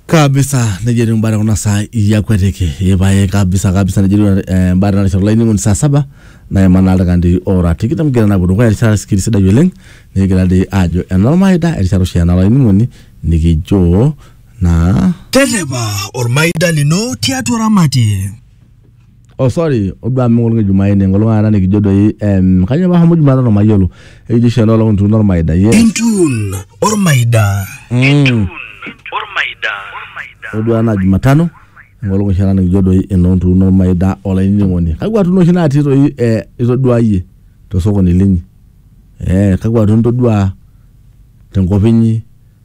kabisa nejia etiu imbaa tekuna saa iyakuetiki ipae kabisa kabisa nejia etiu eh, imbaa tena rishata olainining'oni saa saba naima naa ildaikani ora tikitam kigira naa apuo dukuya erishata sikiri sidai oleng nikigira dii aajo enormaida erishata oshi ena olainining'oni nikijo naa Terrepa ormaida lino tiatua ramatie. oh sorry oduaa amu enkolong e jumaine enkolong taata nikijo doi em kanyoo pahomo jumatano mayiolo ekijo oshi enoolong ntuuno ormaida yes Entuun ormaida. mm. oduaa naa jumatano enkolong oshi taata nikijo doi enoo ntuuno ormaida olainining'oni kakua tuuno oshi natii doi eh, itoduaa iyie tosokoni linyi eh, kakua tuuno itoduaa tenkop inyi.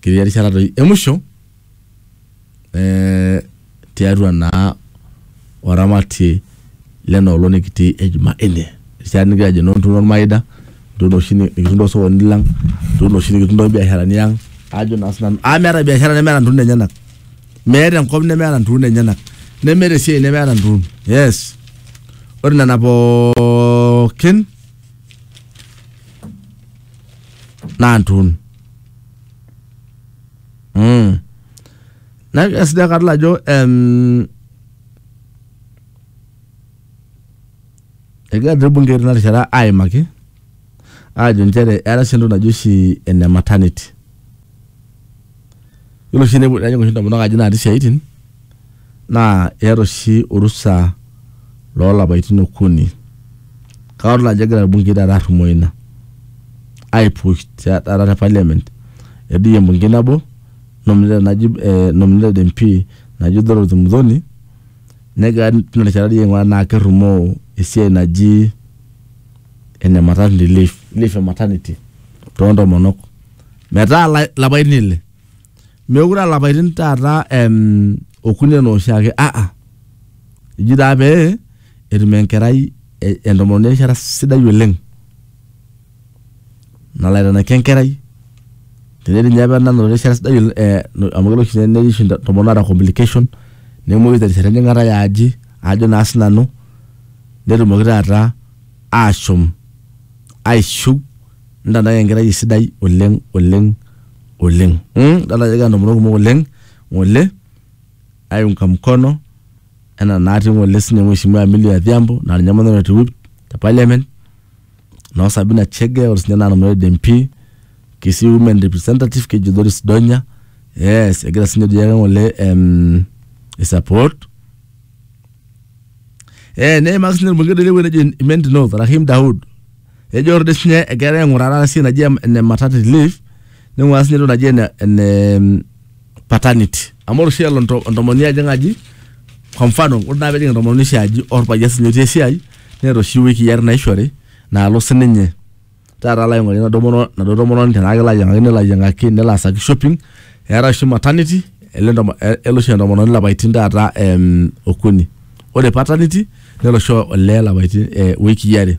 ketii erishata doi emusho eh, tiatua naa oramatie lena olong nikitii e Jumanne. Erishata nikigira ajo noo ntuno ormaida, ntuno oshi nikitum tosokoni lang, ntuno oshi nikitum tobiasharani ang, ajo naa sinanu. Amu meeta biashara nemeeta ntuun enyanak. Meeta enkop nemeeta ntuun enyanak. Nemeeta esiai nemeeta ntuun. Yes. Ore nena pookin, naa ntuun. Mm. Na esidai kadol ajo em, egira te bunge tina rishata aimaki aajo nchere eeta sii entoki naji oshi ene maternity Yiolo oshi tenepuo tenejing oshi intomonok aji natii isiaitin naa eeta oshi orusa loolapaitin okuni. Kake adol ajo egira irbungei taata arrumoo ina aipush taata te parliament. Edoyio embungei nabo nominated naji eh nominated MP naji Dorothy Muthoni negira toi tina rishata aing'uraa tenaa kerrumoo esiai naji ene maternity leave, leave e maternity too ntomonok metaa la- lapaitin ile meekure aa lapaitin taata em, okuni enaa oshiake aa eji taa pee etum enkerai e- entomononi erishata sidai oleng nalo aitanaki enkerai tenetii ninye apa nanotore erishata sidai oleng, eh, no- amu kelo oshi netii oshi intomonok naata complication nemoyu terishata enjing'ata yaaji ajo naa sinanu netumoki taata ashom aishiu ntadai enkerai sidai oleng oleng oleng mm? dala ajo kegira ntomonok kumok oleng ng'ole aiunga mkono ena natii ng'ole sinye mheshimiwa Amelia Adhiambo naa ninye maneno te whip te parliament noo Sabina Chege ore sinye naa nanu red MP Kisii women representative keji Doris Donya yes egira sinye doi ake ng'ole em, i support eh neimaki sinye orbungei doi le wueji nejo Imenti North Rahim Daud ejo ore doi sinye egira aing'uraa taata esiai naji em- ene maternity leave ning'uraa sinye entoki naji ene ene mm, paternity amu ore oshi elo ento- entomononi ajing aji kwa mfano ore naa pejing entomononi oshi aji orpayian sinye otii esiai neeta oshi iwikii are naishori naalo sininye taata alo aing'orie enaduo mono- enaduo tomononi tenaa kelo ayiang'aki nelo ayiang'aki nelo aasaki shopping eetae oshi maternity ele entomo- eh, elo oshi entomononi ilapaitin taata em, okuni ore paternity nelo oshi olee ilapaitin eh, iwikii are.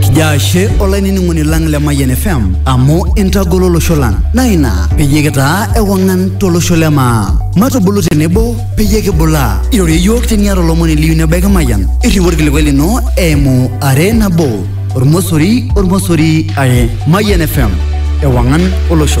Kijaa ashe olainining'oni lang le Mayian FM amu intagolo olosho lang naa ina peyie kitaa ewang'an tolosho le maa. Matubulu tenebo peyie kibulaa. Irorie iyiook teniata olomoni liyieu nebaiki Mayian. Irriu orkilikuai lino eimu are nabo ormosori ormosori are. Mayian FM ewang'an olosho.